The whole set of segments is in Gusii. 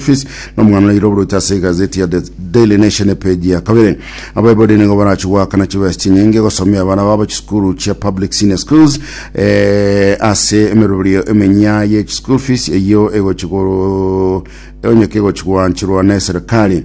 Fils, na omwana oyo airoborwete ase egazeti ya The Daily Nation epeji ya kabere. Abaibori nigo barachie goakana chibesa chinyinge gosomia abana babo chisukuru chia public senior schools eh, ase emeroberio emenya ye chischool fees eyio egochi go- egonyoka egochi goanchorwa na eserekari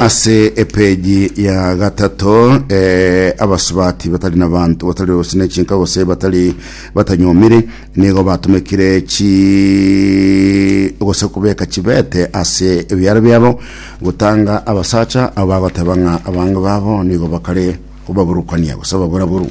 ase epeji ya gatato eh, abasubati batari na bantu batari gose na chinka gose batari batanyomire nigo batumekire chi gose kubeka chibete ase ebiara biabo gotanga abasacha abo bagoteba ng'a abange babo nigo bakare kobaburukania gose baburaburu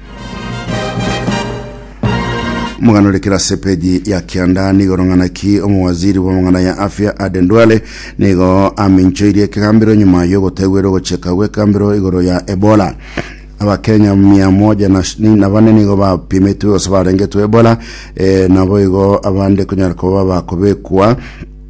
Omogano ore kera ase epeji ya kianda nigo orong'ana ki omowaziri bw'amang'ana ya afya Aden Duale nigo aminchoirie ekegambero nyuma y'ogotegwera ogocheka gw'ekambero igoro ya Ebola. Abakenya mia moja na sh- ni- na bane nigo bapimitwe gose barengetwe Ebola eh, nabo igo abande konyara koba bakobekwa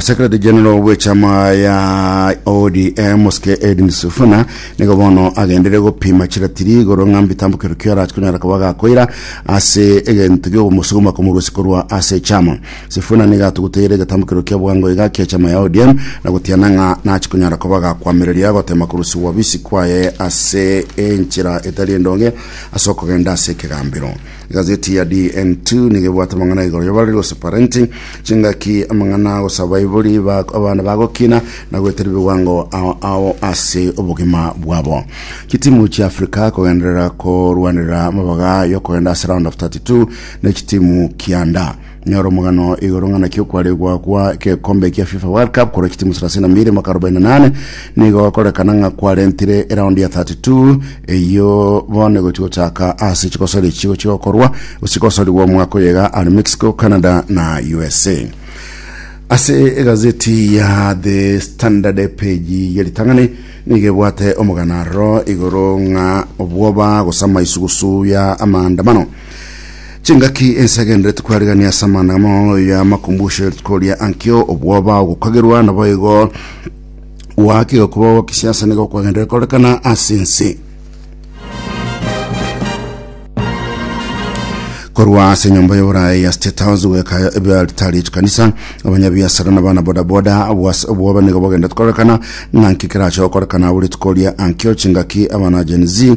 Secretary General bw'echama ya ODM Osike Edwin Sifuna nigo bono agendire gopima chiratiri igoro ng'a mbitambo kero kio arachi konyara koba gakoira ase egento gi'ogomosuguma komorusia korwa ase echama Sifuna nigo atuguteire egetambo kero kia bwango iga kia echama ya ODM na gotiana ng'a nachi konyara koba gakwamereria gotema korusia wabisi kwaye ase enchera etari endonge ase okogenda ase ekegambero Egazeti ya DN2 nigo ebwate amang'ana igoro y'oborori gose parenti, chingaki, amang'ana gose abaibori ba abana bagokina na goetera ebiwango ao ao ase obogima bwabo. Chitimu chia Africa kogenderera korwanera amabaga y'okogenda ase round of 32 ne chitimu kianda. Nyora omogano igoro ng'a naki okwaregwa kwa egekombe kia FIFA World Cup korwa chitimu 32 mwaka 48 nigo gokorekana ng'a kwarentire eraundi ya 32 eyio bono egochi gochaka ase chigosori echi chigochi gokorwa gose chigosorigwa omwaka oyo iga are Mexico, Canada na USA. Ase egazeti ya The Standard epeji ya ritang'ani nigo ebwate omogano aroro igoro ng'a obwoba gose amaisugusu ya amaandamano Chingaki ense egenderete kwarigania ase amang'ana amao ya makumbusho ya rituko ria ankio, obwoba, ogokagerwa, naboigo goaka egokuba gwa kisiasa nigo kwagenderere korekana ase ense. korwa ase enyomba y'oborae ya state house goeka ebiaritari echikanisa abanyabiasara na bana bodaboda obwoba nigo bogenderete korekana ng'a nki kerache gokorekana abo rituko ria ankio chingaki abana gen z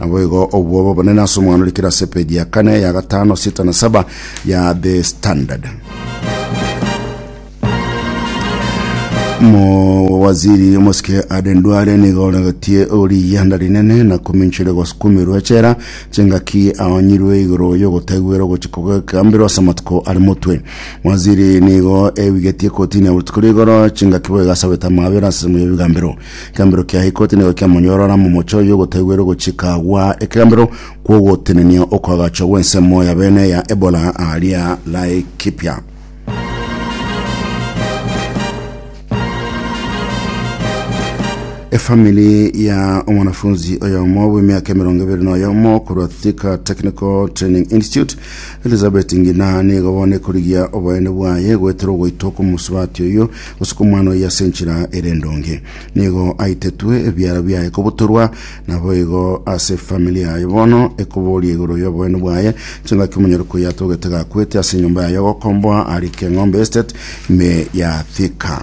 Naboigo obwo bobonene ase omwana ore kere ase epeji ya kane, ya gatano, sita na saba ya The Standard. Mo waziri omosike Aden Duale nigo oregetie oriyanda rinene na kominchire gosukumirwa echera chingaki aonyirwe igoro y'ogotegwera ogochia kogekambirwa ase amatuko ari motwe. Waziri nigo ebigetie kotini ya botuko rigoro chingaki boigasabete amabera ase semo y'ebigambero. Ekegambero kia ikoti nigo kiamonyorora momochie oyio ogotaiwera ogochika gwa ekegambero kw'ogotenenia okoagachwa gw'ensemo ya bene ya Ebola aaria Laikipia. Efamili ya omwanafunzi oyomo bw'emiaka emerongo ebere na oyomo korwa Thika Technical Training Institute Elizabeth Ngina nigo bono ekorigia oboyene bwaye goetera ogoitwa kw'omosubati oyio gosuka omwana oye ase enchera ere endonge. Nigo aitetwe ebiara biaye kobutorwa, naboigo ase efamili yaye bono ekoboria igoro y'oboene bwaye. Chingaki omonyori koyia atogete gakwete ase enyomba yaye ogokomboa arike ng'ombe estate ime ya Thika.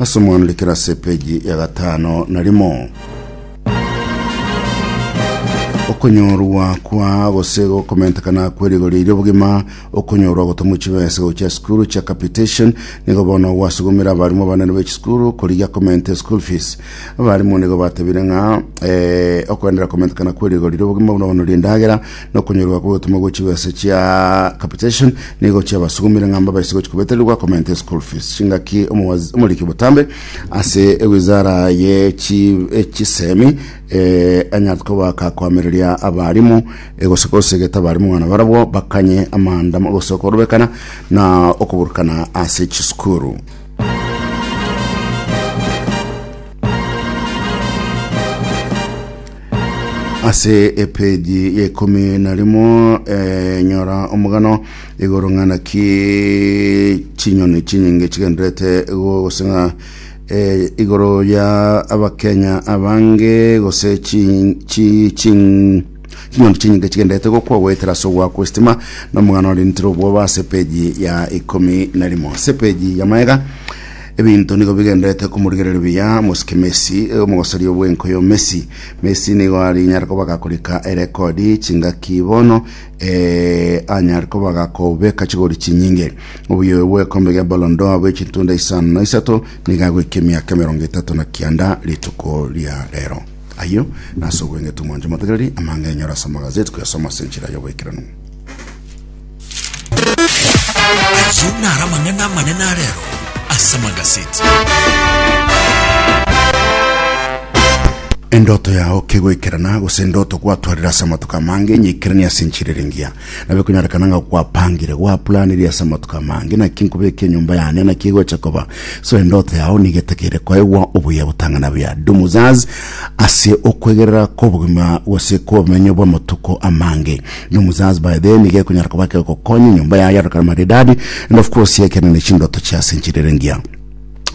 Ase omwana ore kerasi epeji ya gatano na rimo. Okonyorwa kwa gose gokomentekana kwe rigori erio bogima okonyorwa gotomwa chibesa gochia sukuru chia capitation nigo bono gwasugumire abarimu abanene be chisukuru korigia komente school fees abarimu nigo batebire ng'a eh, okoenderera komentekana kwe rigori erio bogima buna bono rindagera nokonyorwa kw'ogotoma gwe chibesa chia capitation nigo chiabasugumire ng'a mbabaise gochia kobetererwa komenta eschool fees chingaki omowazi- omoriki botambe ase ewizara ye chi- echisemi eh, anyare kobaka koamereria abarimu eh, gose kosegeta abarimu ng'a nabarabwo bakanye amaandamo gose okorobekana na okoburukana ase chisukuru ase epeji ya ikomi na rimo eh, nyora omogano igoro ng'ana ki chinyoni chinyinge chigenderete goseng'a eh, igoro ya abakenya abange gose chi- chi- chin- chinyoni chinyinge chigenderete gokwa goetera ase ogwa kwesitima na omogano orintire obwoba ase epeji ya ikomi na rimo ase epeji ya maega Ebinto nigo bigenderete komorigereria buya mosike Messi, omogosoria bw'enkoyo Messi. Messi nigo arinyare koba gakorika erekodi chingaki bono, ee, anyare koba gakobeka chigori chinyinge. Oboyoyo bw'ekombe gia Ballon d'Or bwe chintunda isano na isato nigo agoika emiaka emerongo etato na kianda rituko ria rero. Ayio nase obweng'etu mwanche motegereri amang'enyo ore ase amagazeti koyasoma ase enchera y'oboikeranu. Ayio naro amang'ana amanene a rero ase magaseti. endoto yao kegoikerana gose endoto gwatwarire ase amatuko amange nyikerania ase enchirerengia nabe konyorekana ng'a gwapangire gwaplaniri ase amatuko amange naki nkobeke enyomba yane naki egocha koba so endoto yao nigo etakeire koegwa obuya botang'ana buya dumuzaz ase okwegerera kobogima gose kobomenyo bw'amatuko amange na omosasbae then iga ekonyara koba ekegokonya enyomba yaye yarokana maridadi and of course ekene ne chindoto chiase nchirere ngiya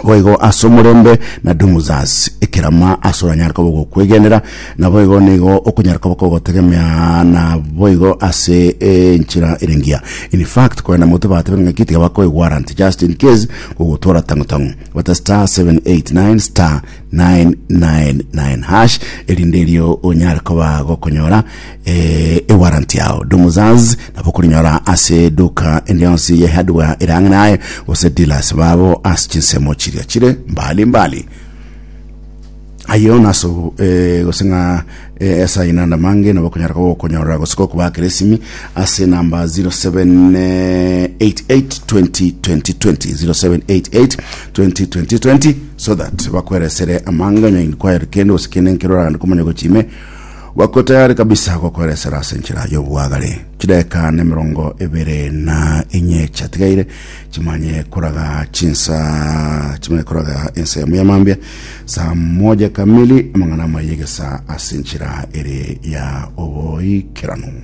boigo ase omorembe na dumuzas ekerama ase oranyare koba ogokwegenera na boigo nigo okonyara koba kogotegemea na boigo ase enchera ere ngiya in fact kwenda moto batebe ng'aki tiga bakoe warrant just in case gogotwara tango tango bata star 789 star 999 hash erinde erio onyare koba gokonyora eh, ewarrant yao domuzaz nabo okorinyora ase eduka endi yonsi ye hardware ere ang'e naye gose dealers babo ase chinsemo chiria chire mbali mbali ayo naso eh, gose ng'a eh, ase aye nanda mange nabo okonyara koba okonyorora gose kokobakera esimi ase namba 0788202020 so that bakweresere amanga onye kwaere kende gose kende nkeroragane komanya gochime Bako tayari kabisa gokoeresera ase enchera y'obwagare. Chideka nemerongo ebere na enye chiatigaire chimanye koraga chinsa chimanye koraga ensa yamo y'amambia saa moja kamili amang'ana amaye gesa ase enchera ere ya oboikeranu.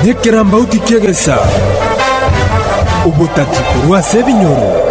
Nekerambauti ki'egesa, ogotati korwa ase ebinyoro.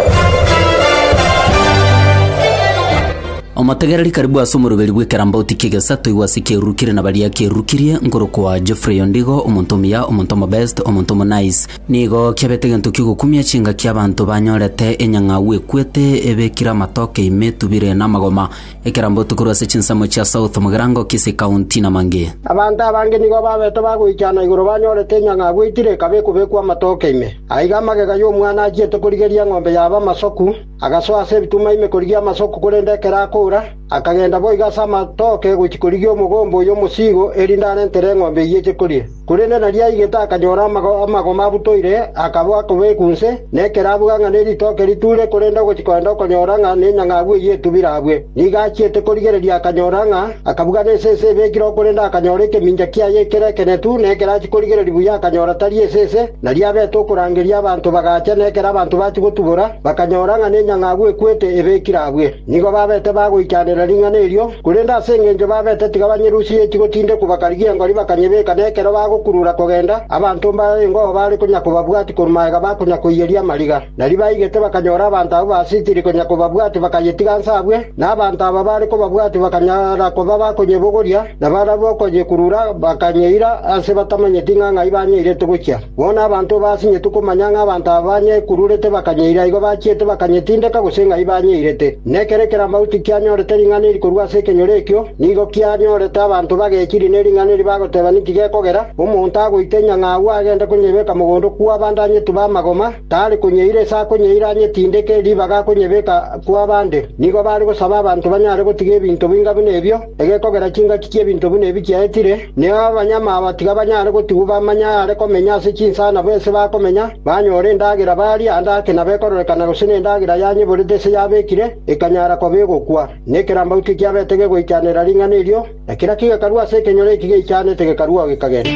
Omotegereri karibu ase omoroberi bw'ekerambauti ki'egesa toigwe ase ekeruru kere na baria kerurukirie, nkorokwa Geoffrey Ondigo, omonto omuya, omonto omobest, omonto omonice. Nigo kiabete egento ki'ogokumia chingaki abanto banyorete enyang'au ekwete, ebekire amatoke ime, etubire, na amagoma. Ekerambo Tukuru ase chinsemo chia South Mugirango, Kisii County, na mangĩ. Abanto abange nigo babete bagoichana igoro banyorete enyang'a agweitire ekaba ekobekwa amatoke ime. Aiga magega y'omwana achiete korigeria eng'ombe yaba amasoku, agasoa ase ebituma ime korigia amasoku korende ekero akoura, akagenda boigo ase amatoke gochia korigia omogomba oyo omosigo erinde arentere eng'ombe eyio eche koria. Korende nariaigete akanyora amagoma abutoire, akaba akobekwa inse, na ekerabuga ng'a ne ritoke riture, korende ogochia kogenda okonyora ng'a nenyang'abu eyio etubire abwe. Nigo achiete korigereria akanyora ng'a akabuga nense ense ebekire oo korende akanyora ekemincha kiaye ekere ekenetu, na ekero achia korigereria buya akanyora tari ense ense. Nariabete okorangeria abanto bagacha, na ekero abanto bachia gotubora, bakanyora ng'a nenyang'abu ekwete ebekire abwe. Nigo babete bagoichaneria ring'ana erio. Korende ase engencho babete tiga banyerusie eti gotindekwa bakarigia engori bakanyebeka na ekero bagokurura kogenda, abanto mbaya ingobo bare konya kobabwati korwa magega bakonya koiyeria amariga. Na ribaigete bakanyora abanto abwo basitiri konya kobabwati bakayetiga nse abwe, na abanto aba bare kobabwati bakanyara koba bakonyebogoria, na barabwo okonyekurura bakanyeira ase batamanyeti ng'a ng'ai banyeirete gochia. Bono abanto basinyetwe komanya ng'a abanto aba banyekururete bakanyeira igo bachiete bakanyetindeka gose ng'ai banyeirete. Na ekero ekeramauti kianyorete ring'ana eri korwa ase ekenyoro ekio, nigo kianyorete abanto bagechiri ne ring'ana eri bagoteba ninki gekogera, Omonto agoita enyang'a agwo agende konyebeka mogondo kw'abande anyetube amagoma, tare konyeira ase akonyeira anyetindeke ribaga akonyebeka kw'abande. Nigo bare gosaba abanto banyare gotiga ebinto boinga buna ebio, Egekogera chingaki chi'ebinto buna ebi chiaetire, neo abanyama aba tiga banyare gotigwa bamanye aare komenya ase chinsa nabo ense bakomenya, banyore endagera barie ande ake nabekororekana gose nendagera yanyeborete ase yabekire ekanyara koba egokwa. Na ekerambau tikiabete gegoichanera ring'ana erio, na kera kigekarua ase ekenyoro eki geichanete gekarua gekagenda.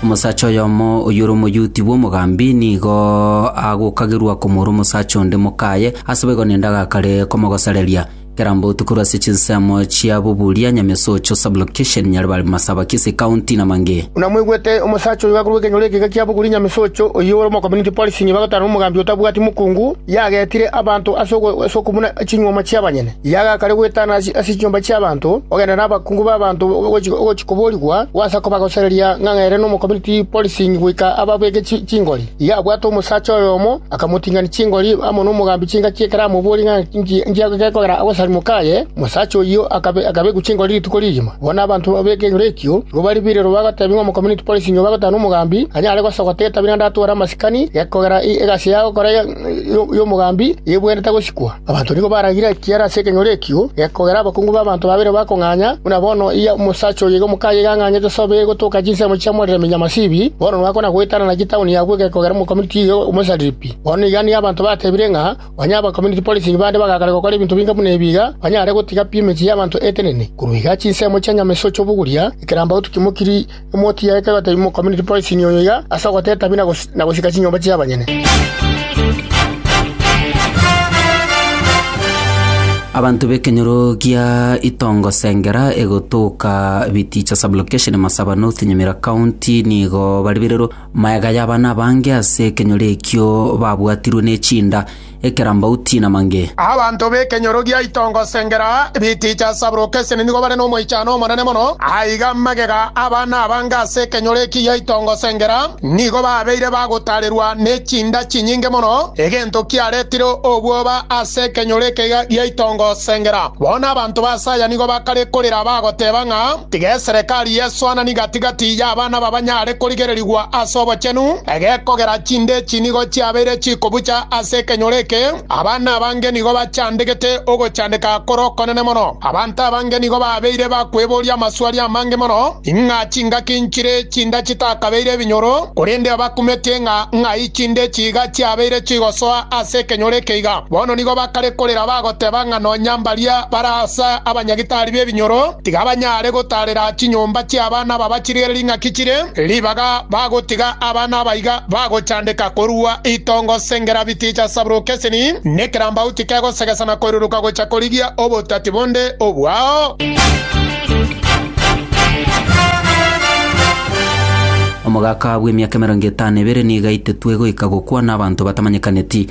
Omosacha oyomo oyore omoyuti bw'omogambi nigo agokagerwa komora omosacha onde mokaye ase boigo nende agakare komogosereria. Keramba otukorwe ase chinsemo chia Buburia, Nyamesocho Sub-location, Nyaribari, Masaba, Kisii County na mangĩ. Buna mwaigwete, omosacha oyo gakorwa ekenyoro ekeiga kia Buguri Nyamesocho, oyio ore omocommunity policing, bagotana nomogambi otabwati mokungu, yagetire abanto ase ase okobuna chinyuoma chi'abanyene. Riaga kare gwetana ase chinyomba chi'abanto, ogende nabakungu b'abanto ogochia koborigwa, gwasa kobagosereria ng'a ere nomokomiti policing goika ababeke chingori. Iga abwate omosacha oyomo, akamoting'ani chingori amo nomogambi chingaki ekero amoborie ng'a inki gekogera agosarigwe kaye. Omosacha oyio akabekwa chingori rituko rigima. Bono abanto b'ekenyoro ekio nigo bare birero bagotebia ng'a omokomiti policing obe agotana nomogambi, anyare gosogota etabera naende atware amasikani gekogera egasi yagokora. y'omogambi nebwenerete gosikwa. Abanto nigo baragire ekiara ase ekenyoro ekio, gekogera abakungu b'abanto babere bakong'anya, buna bono aya omosacha oyoiga omokaye iga ang'anyete sobo eye gotoka chinsemo chia Morere Minyamasibi, bono nogakwana goetana naki etaoni y'abwo egekogera omokomiti oyo omosaripi. Bono iga nigo abanto batebire ng'a onye abakomiti policing bande bagakare gokora ebinto binga buna ebi iga, banyare gotiga pi emechie y'abanto etenene, korwa iga chinsemo chia nyamesio ch'oboguria, ekerambagoto kimokiri, Omotienyi taiyo otebi mo community policing oyo iga ase ogoteta bi na gosika chinyomba chi'abanyene. Abanto b'ekenyoro gia Itongo Sengera egotoka Biticha Sub-Location Masaba North Nyamira County nigo baribererwe maega y'abana abange ase ekenyoro ekio babwatirwe ne chinda ekerambauti na mange. Abanto b'ekenyoro gia itongo Sengera, ebiticha Sabrukesene nigo bare nomoichano omonene mono. Aiga magega aba nabange ase ekenyoro eki gia itongo Sengera nigo babeire bagotarerwa ne chinda chinyinge mono, egento kiaretire obwoba ase ekenyoro eke gia itongo Sengera. Bono abanto b'Asaya nigo bakare korera bagoteba ng'a. Tiga eserekari y'esoanani gati-gati y'abana babanyare korigererigwa ase obochenu, egekogera chinde echi nigo chiabeire chikobucha ase ekenyoro eke, abana abange nigo bachandegete ogochandeka kore okonene mono. Abanto abange nigo babeire bakweboria amaswali amange mono, ing'a chingaki nchire chindachi takabeire ebinyoro, korende abakumetie ng'a ng'ai chinde echi iga chiabeire chigosoa ase ekenyoro eke iga. Bono nigo bakare korera bagoteba ng'a nonya mbaria bare ase abanyagitari b'ebinyoro, Tiga banyare gotaarera chinyomba chi'abana aba bachirigere ring'aki chire ribaga bagotiga abana aba iga bagochandeka korua itongo sengera biticha sabrokeseni, nekerambauti kegosegesa na koiruruka gocha korigia obotati bonde obwao. Omogaka bw'emiaka emerongo etano ebere nigo aitetwe goika gokwana abanto batamanyekaneti,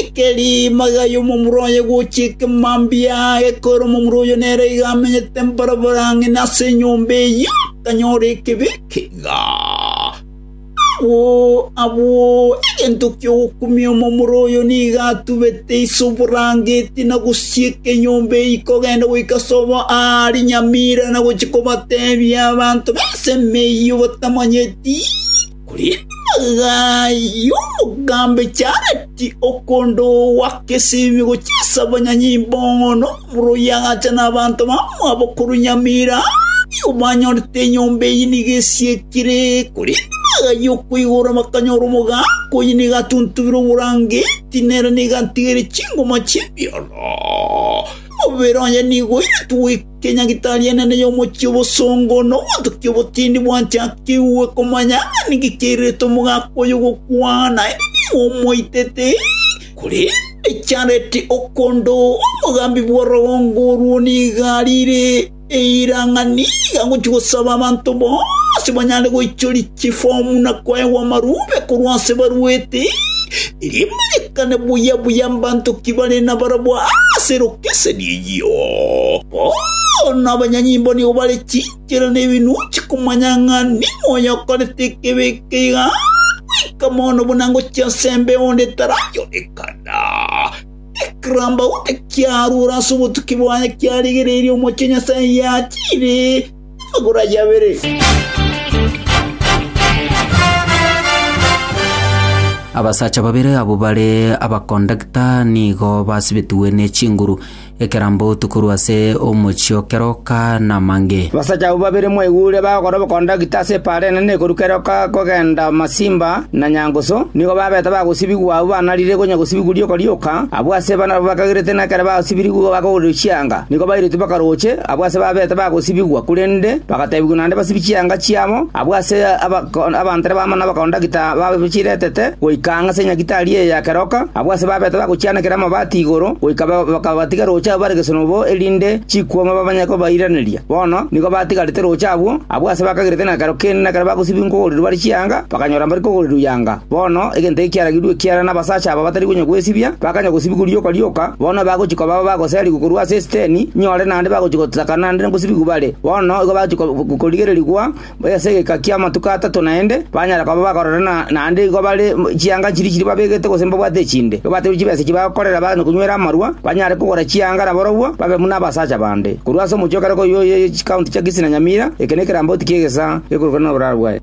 Ekeri magayo omomura oye gochiika amambia, ekegoera omomura oyio nere iga amenyete mboroboro ang'e nase enyomba eyio, akanyora ekebe ekeiga. Agwo abwo egento ki'ogokumia omomura oyo nigo atubete ise oborangeti na gosieka enyomba eyio kogenda goika sobo aa rinyamira na gochia kobatebia abanto b'ensemo eyio batamanyeti. Riaga y'omogambi Jareti okondoa gesingo chi'esabo nyanyimbo nomura oyagacha nabanto bamwabo korwa nyamira aria banyorete enyomba eye nigo esiekire. Korende riaga y'okoigora bakanyora omogaaka oye nigo atuntubire oborangeti, nere nigo atigire chingoma chi'ebioro, omobere oye nigo oiretwe Kenyagitari enene y'omochie obosongo na obotukia obotindi bwanchakigwe komanya ng'a ninki kiairerete omogaka oyo gokwana, erio nigo omoitete. Korende Jaredi okondo, omogambi bw'orogongo orwo, nigo arire eira ng'a nigo agochia gosaba abanto bonsi banyare goichoria. chifomu na koegwa amarube korwa ase barwoti, rimanyekane buya buya mbanto ki bare nabarabwo ase lokeseni eyio. Bono abanyanyimbo nigo bare chinchera na ebinuchi komanya ng'a ning'o oyokorete ekebe eke iga, goika mono buna ngochia ase embeo onde taranyorekana. Ekirambauta kiarure ase obotuki bwaye kiarigereirie Omochie Nyasae yachiire, Magoro ayio abere. Abasacha babere abwo bare abakondakta nigo basibetigwe ne chinguru ekerambo tokorwa ase omochie o keroka na amange. Abasacha abwo babere mwaigure bagokora obokondakita ase epaara enene ekoruka eroka kogenda Masimba, na nyangusu, nigo babete bagosibigwa abwo banarire gonya gosibigwa rioka rioka, abwo ase barabwo bakagerete na ekero basibirigwe bakagorerwa chianga, nigo bairetwe bakaroche abwo ase babete bagosibigwa, korende bagatebigwa naende basibie chianga chiabo abwo ase abanto baabo na abakondakta baabo chiretete goika ang'e ase Nyagetari eye ya keroka, abwo ase babete bagochianekera amabati igoro goika bakabatiga roche abwo bare gesonobo, erinde chikuoma babanye kobairaneria. Bono nigo batigarete rooche abwo, abwo aase bakagerete nekero keene nekero bagosibigwa nkogorirwa bare chianga, bakanyora mbare kogorirwa yanga. Bono egento eke kiaragirwe ekiagera nabasacha aba batari konya gwesibia, bakanya gosibigwa rioka rioka, bono bagochia koba abagoserigwa korwa ase esiteni, inyore naende bagochia gosakana naende ngosibigwa bare, bono igo bagochia korigererigwa, Buna ase egeka ki'amatuko atato naende, banyare koba bakorera naende igo bare chianga chiria chiria babegete gose mbabwate echinde. Igo bateebwe chibesa echio bagokorera na konywera amarua, banyare kogora chianga nabarobwo babe buna abasacha bande. Korwa ase omochie o kare koyio oye chikaunti chia Kisii na Nyamira, eke nekerambauti ki'egesa gekorokana noboraro bwaye.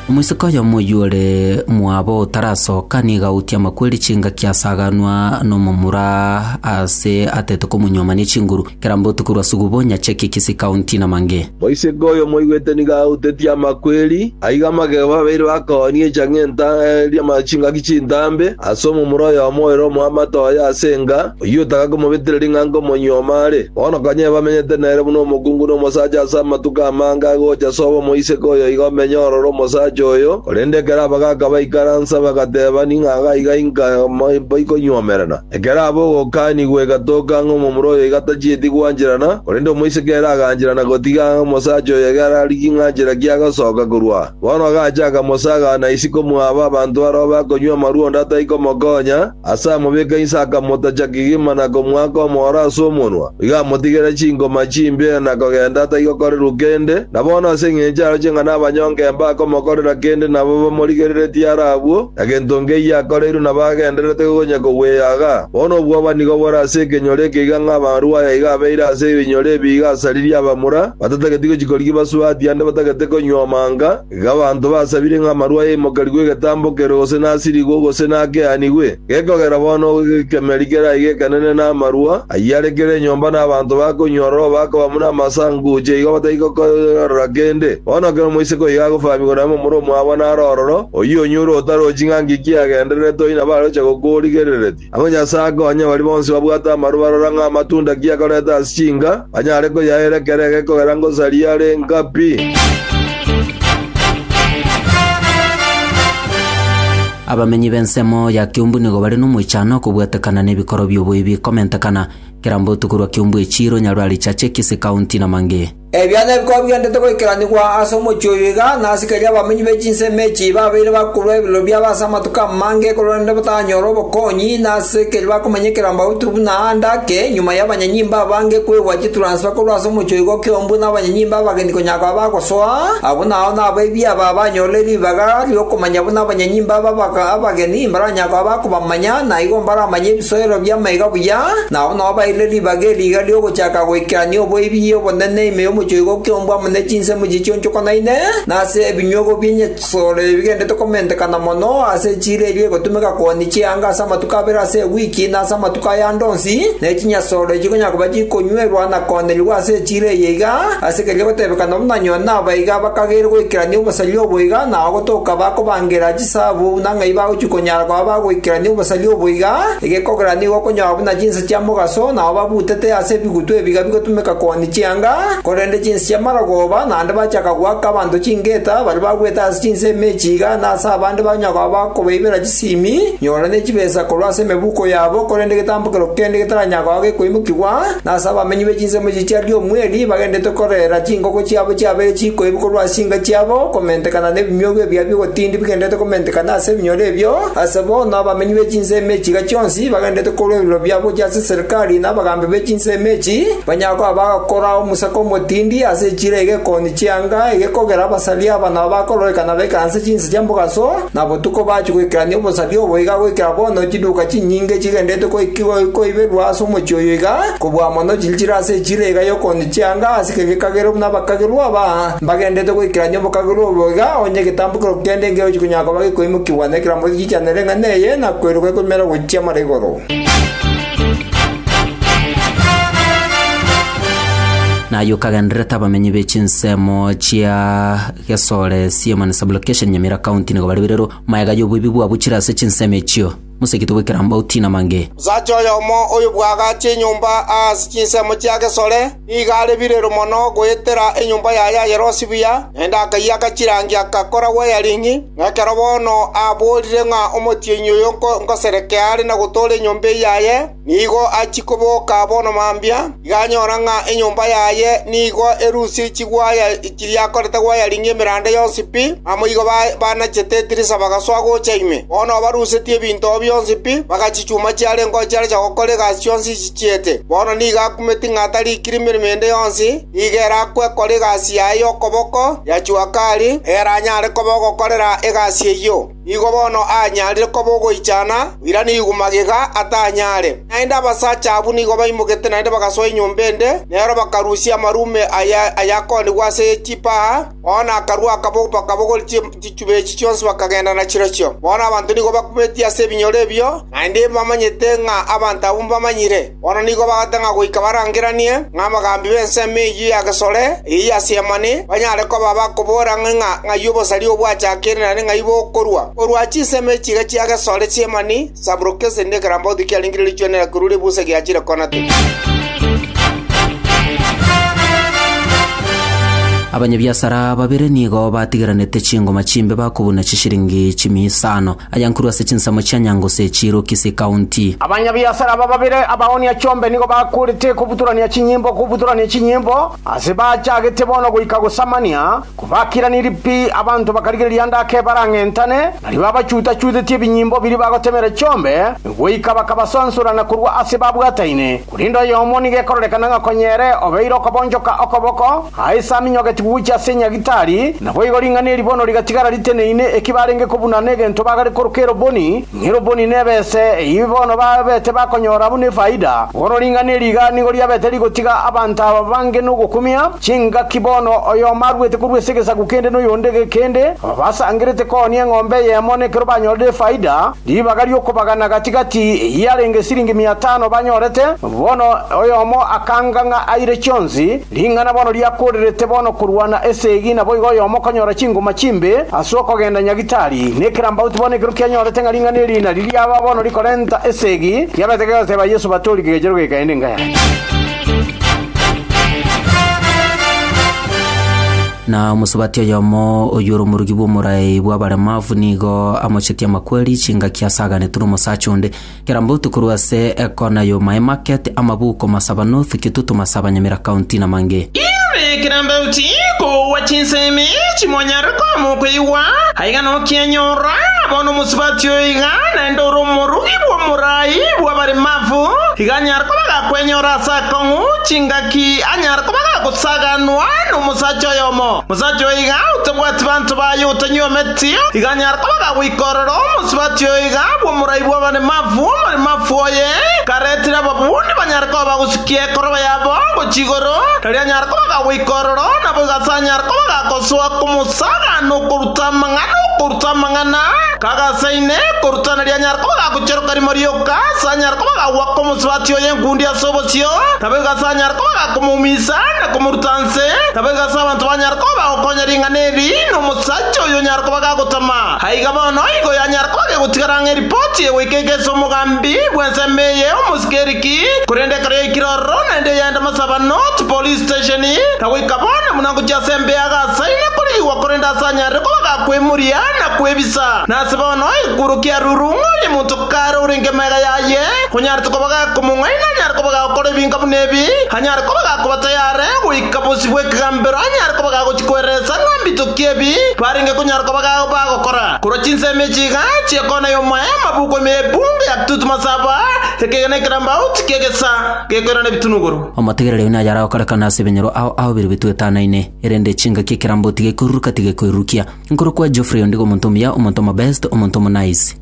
Omoiseke oyomo oyio ore mwabo otarasoka nigo autie amakweri chingaki asaganwa nomomura Ase atete komonyuoma ne chinguru kera mbotuko rwa sugubo, nyacheke kisi kaunti na mange. Moiseke oyo moigwete nigo autetie amakweri, aiga amagego babeire bakoonia echang'enta ri'ama chingaki chintambe ase omomura oyomo oere omoamate oye ase enga, oyio otaka komobetera ring'anko omonyuoma are. Bono kanyee bamenyete nere buna omokungu na omosacha ase amatuko amange agocha sobo moiseke oyo iga omenye ororo omosacha oyo, korende ekero abagaaka baikaransa bagateba, Ning'aga aiga inka baikonyuomerana? Ekero aba ogokaanigwa egatoka ng'a omomura oyo iga tachieti gwancherana, korende omoiseke ere agancherana gotiga ng'a omosacha oyo iga ararigie ng'a anchera ki agasoka korwa. Bono agacha akamosaga na isiko mwaba abanto aroro bakonywa amarwa onde atai komokonya, ase amobeka inse akamotacha kegima na komoaka omooro ase omonwa, iga amotigere chinkoma chimbe na kogenda atai gokorerwa kende, na bono ase engencho aroche ng'a nabanyonge mbakomokorera kende nabo bamorigereretie ara abwo, Egento nkeyio akoreirwe nabo agendererete gonya kogweyaga. Bono obwoba nigo bore ase ekenyoro ekeiga ng'a amarwa aya iga abeire ase ebinyoro ebi iga asaririe abamura, batatageti gochia korigia basu ati ande batagete konywa omanga, iga abanto basabire ng'a amarwa aya aimokerigwe egetambokerwe gose nasirigwe gose nakeanigwe. Gekogera bono gekemeri keraiga ekenene na amarwa ayio are kera enyomba na abanto bakonywa ororo bakoba buna amasanguche igo batari gokoorora kende. Bono kera omoiseke oyo iga agofahamigwa na momura omwabo naro ororo, Oyio onyure otarochi ng'a ngiki agendererete oyio nabo aroche gokorigerereria. Agwo Nyasae akonye baria bonsi babwate amaru barora ng'a amatunda ki akorete ase chinka, banyare koyaera ekero ege kogera ngosaria are nka pi. Abamenyi b'ensemo ya Kiumbu nigo bare nomoichano okobwatekana nebikoro bi'oboibi komentekana, kera mbotuko rwa Kiumbu echiiro, Nyarwari, Chache, Kisii County, na mangĩ. Ebiana ebi kobigenderete goikeranigwa ase omochie oyo iga, na asikari abamenyi be chinsemo echi babeire bakorwa ebiroro biabo ase amatuko amange korwa rende batanyore obokonyi, na ase keria bakomenyekera mbabutu buna aande ake, nyuma y'abanyanyimba abange kwegwa chituransfa korwa ase omochie oigo kiombwe na abanyanyimba abageni konya koba bagosoa, abwo nao nabo ebiaba abanyorire ribaga ri'okomanya buna abanyanyimba aba abageni mbaranya koba bakobamanya. Manya naigo mbaramanye ebisoero bi'amaiga buya, na abwo nabo baeire ribaga eriiga ri'ogochaka goikerania oboibi obonene ime y'omochoigo ki'ombwa amo ne chinsemo chichionchokonaine, na ase ebinyuogo bi'enyesore ebigenderete komentekana mono ase echiira eria egotumeka kooni chianga ase amatuko abere ase ewiki na ase amatuko aya ande onsi, ne chinyesore chikonyara koba chikonywerwa na koonerigwa ase echiira eye iga, ase keria gotebekana buna nyoo nabaiga bakageire goikerania obosaria obo iga nao gotoka bakobangera Ase abwo buna ng'ai bagochia konyara koba bagoikerania obosaria obo iga, egekogera nigo okonyoa buna chinsa chia mogaso nao babutete ase ebigutu ebiga bigotumeka koonia chianga, korende chinsa chia marogoba naende bachaka goaka abanto chingeta baria bagwete ase chinsa emechi iga, na ase abande banyoa koba bakobaibera chisimi, nyora ne chibesa korwa ase emebuko yabo, korende egetambo kerokio kende getaranyara koba gekoimokigwa, na ase abamenyi be chinsemo echi chia Riomweli bagenderete korera chingoko chiabo chiabere chikoibu korwa ase inga chiabo komentekana nebinyuogwa ebia bi'ogotindi bigendererete komentekana ase ebinyoro ebio, ase bono abamenyi be chinsemo echi iga chionsi bagendererete korua ebiroro biabo gochia ase serikali na abagambi be chinsemo echi, banyare koba bagakora omosaka omotindi ase echiro eye gekoonia chianga egekogera abasari aba nabo bakororekana b'ekansa chinsa chia mogaso, Na botuko bachia goikerania obosaria obo iga goikera bono chiduka chinyinge chigenderete koiberwa ase omochie oyo iga, kobua amo no chinchera ase echira iga y'okooni chianga ase kera gekagerwa buna abakagerwa aba mbagendererete goikerania obokagerwa obo iga, onye egetambo kerokio kende nkegio chikonyara koba gekoimokigwa na ekerango gechichanere ng'a neye, na koiroka ekoimera gochia mara igoro. Naye okagendererete abamenyi be chinsemo chia. Gesore, Siema na Sublocation Nyamira County nigo bare birero, mayega y'oboibi bwabo chire ase chinsemo echio. Moseketie goikera Mbauti na Mange. Osacha oyomo oyo bwagache enyomba aase chinsemo chia Gesore, nigo are birero mono goetera enyomba yaye ayerosie buya, naende akayiaka chirangi agakora wiring, na ekero bono aborire ng'a omotienyi oyo nkoserekee are na gotoora enyomba eyaye, Nigo achia koboka bono mambia, iga anyora ng'a enyomba yaye nigo erusie chigwaya chiria akorete gwayaringia emeranda yonsi pi. Naboigo baanachete edirisa bagasoa gocha ime. Bono barusetie ebinto oo bionsi pi, bagachichuma chiarengeo chiarecha gokora egasi chionsi echi chiete. Bono nigo akumeti ng'a atarikire emeremo ende yonsi, nigo ere akwe kora egasi yaye y'okoboko ya Chuakari, ere anyare koba ogokorera egasi eyio. Nigo bono aanyarire koba ogoichana, oirane igwa magega atanyare. Naende abasacha abwo nigo baimoketie naende bagasoa enyomba ende, nero bakarusia amarume aye ayakoonigwa ase chipaa. Bono akarua bakabogora chichuba echi chionsi bakagenda nachirochio. Bono abanto nigo bakubetie ase ebinyoro ebio, naende mbamanyete ng'a abanto abwo mbamanyire. Bono nigo bagate ng'a goika barangeranie ng'abagambi b'ensemo eyio ya gesore eye yasiamane, banyare koba bakobora ang'e ng'a ng'ai obosaria oo bwachakire naende ng'ai bokorwa. Korwa chinsemo echi iga chia gesore chi'emani Saburukesi rinde ekerambauti kiarenge richwenera korwa ribusa giachire kona tiri. Abanyabiasara babere nigo batigeranete chingoma chimbe bakobuna chishiringi chimia isano. ayankuru ase chinsemo chia Nyangusu echiirwe Kisii County. Abanyabiasara aba babere abaonia chombe nigo bakorete kobutorania chinyimbo kobutorania chinyimbo ase bachagete bono goika gosamania kobakiranirie pi abanto bakarigereria ande ake barang'entane nari babachuta-chutetie ebinyimbo biria bagotemera chombe goika bakabasansora na korwa ase babwataine Korende oyomo nigo ekororekana ng'a konya ere obeire okobonchoka okoboko, aise aminyogetigwe gochia ase enyagitari, naboigo ring'ana eri bono rigatigara riteneine eki barenge kobuna negento bagare koroka eroboni, ng'a eroboni nebese, eyio bono babete bakonyora buna efaida. Bono ring'ana eri iga nigo riabete rigotiga abanto aba bange nogokumia chingaki bono oyomo aruete korwa ase egesaku kende noyonde egekende, aba basangerete koonia eng'ombe eyemo nekero banyorire efaida, Ribaga ri'okobagana gati‐gati eyarenge siringi mia tano banyorete, bono oyomo akanga ng'a aire chionsi, ring'ana bono riakoorerete bono korwa na esegi naboigo oyomo konyora chingoma chimbe as'okogenda nyagitari, na ekerambauti bono ekero kianyorete ng'a ring'ana eri nari riaba bono rikorenta esegi, kiabete kegoteeba Yeso batori kegechero gekaende ngaya. Na omosubati oyomo oyio ore omorugi bw'omoraai bw'abaremavu nigo amochetie amakweri chingaki asaganetwe nomosacha onde. Keramba otokorwa ase ekona yo my market amabuko masaba nothu kitutu masaba nyamira county na mange. Inwe keramba oti koua chinsemi chimonyare koamwa okoigwa, aiga nokienyora, na bono omosubati oyo iga naende ore omorugi bw'omoraai bw'abaremavu, iga anyare koba gakwenyora ase akong'u chingaki anyare koba gagosaganwa nomosacha. Omosacha oyomo, omosacha oyo iga otabwati banto baye otanywa emeti, iga anyare koba gagoika ororo omosubati oyo iga bw'omorai bw'abaremafu, omoremafu oye karetire ababundi banyare koba bagosikia ekoroba yabo gochia igoro, erio anyare koba gagoika ororo, naboigo ase anyare koba gagosoa komosagaana okoruta amang'ana, okoruta amang'ana kagasaine, okoruta nario anyare koba gagocheroka rimo rioka, ase anyare koba gagwa komosubati oyo enkundi ase. ase obosio, naboigo ase anyare koba komoumisa na komoruta nse, naboigo ase abanto banyare koba bagokonya ring'ana eri, na omosacha oyio onyare koba gagotama. Aiga bono igo yanyare koba gegotigara ng'a eripoti egoikeka ase omogambi bw'ensemo eye omosike ere ki, korende ekero yaikire ororo naende yaenda Masabano chipolice station, na goika bono buna ngochia ase embe ya Gasaine korigigwa korende ase anyare koba gakwemuria na kwebisa. Nase bono egekworokia arurung'e onye monto kare orenge magega yaye, Konyarete koba gakomong'aina, anyare koba gagokora ebinka buna ebi, anyare koba gakoba tayare goika bosio bw'ekegambero, anyare koba gagochia kweresa ng'a mbitokie ebi barenge konyara koba bagokora. Korwa chinsemo echi iga chia kona y'omoeema buku ime y'epungu ya Tutmos aba ekegena ekerambauti ki'egesa gekoirana ebitunuguru. Omotegereri oyio nayare agokorekana ase ebenyoro ao ahoberwe ebitu etanaine, erende chingaki ekerambauti gekoiruruka tigekoirurukia. Nkorokwa Geoffrey ondigo omonto omuya, omonto omobest, omonto omonaizi.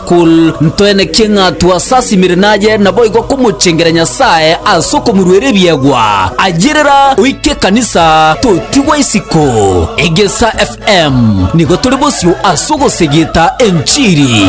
Kul. Ntwenekie ng'a twasasimire naye, naboigo komochengera Nyasae ase okomoruera ebiegwa. Ayerera oike ekanisa, totigwa isiko. Egesa FM nigo tore bosio ase ogosegeta enchiri.